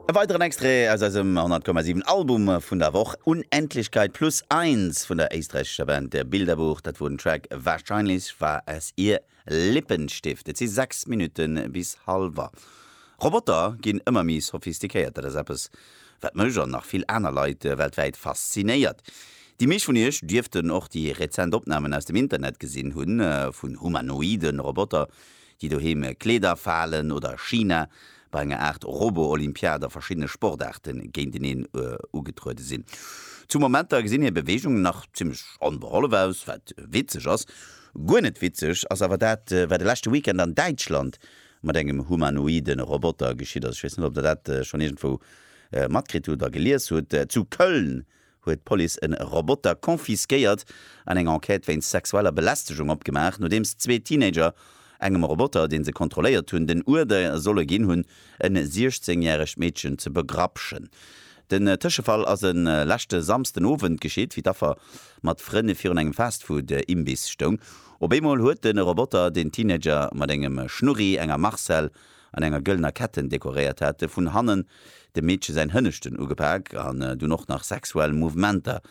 E weideren Extrait aus eisem 100,7 Album vun der Woch, Unendlichkeit plus eins vun der éisträichescher Band Der Bilderbuch. Dat wor den Track Wahrscheinlich war es ihr Lippenstift. Et si 6 Minutte bis halwer. Roboter ginn ëmmer méi sophistikéiert. Dat ass eppes, wat mech an nach vill aner Leit weltwäit faszinéiert. Déi meescht vun iech dierften och déi rezent Opnamen aus dem Internet gesinn hunn, vun humanoide Roboter, déi doheem Kleeder falen oder China bei enger Aart Robo-Olympiad a verschiddene Sportaarte géinteneen ugetruede sinn. Zu Momenter gesinn hir Beweegungen nach zimmlech onbehollef aus, wat witzeg ass. Guer net witzeg ass awer dat, wat de leschte Weekend an Däitschland mat engem humanoide Roboter geschitt ass. Ech weess net, ob Der dat schonn iergendwou matkritt hutt a gelies hutt. Zu Köln huet d'Police e Roboter confisquéiert an eng Enquête wéinst sexueller Belästegung opgemaach, nodeems zwee Teenager engem Roboter, dee se kontrolléiert hunn, den Uerder solle ginn hunn, en 16 järegt Meedchen ze begrapschen. Den Tëschefall ass e leschte Samsden Owend geschitt, wéi d'Affer mat Frënn virun engem Fastfood-Imbiss stoung. Op eemol huet de Roboter den Teenager mat engem Schnurri, enger Marcelle an enger gëllener Ketten dekoréiert hate vun hannen dem Meedche säin Hënneschten ugepak an dunn och nach sexuell Mouvementer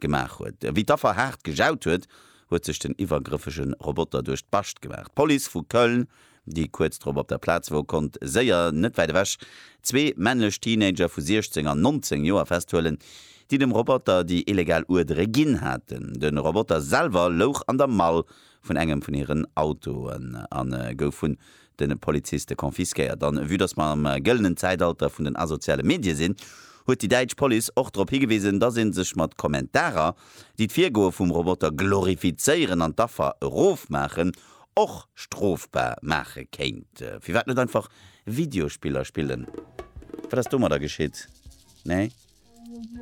gemaach huet. Wéi d'Affer haart gejaut huet, huet sech den iwwergrëffege Roboter duerch d'Bascht gemaach. D'Police vu Köln, déi kuerz drop op der Plaz wor, konnt séier net wäit ewech zwee männlech Teenager vu 16 an 19 Joer festhuelen, déi dem Roboter déi illegal Uerdere ginn haten. De Roboter selwer louch an der Mall vun engem vun hiren Autoen a gouf vun de Poliziste confisquéiert. A vue dass mer am gëllenen Zäitalter vun den asoziale Medie sinn, huet déi däitsch Police och drop higewisen, dass ee sech mat Kommentarer, déi d'Virgoe vum Roboter glorifizéieren an d'Affer erofmaachen, och strofbar maache kéint. Firwat net einfach Videospiller spillen? Wat ass domadder geschitt? Nee?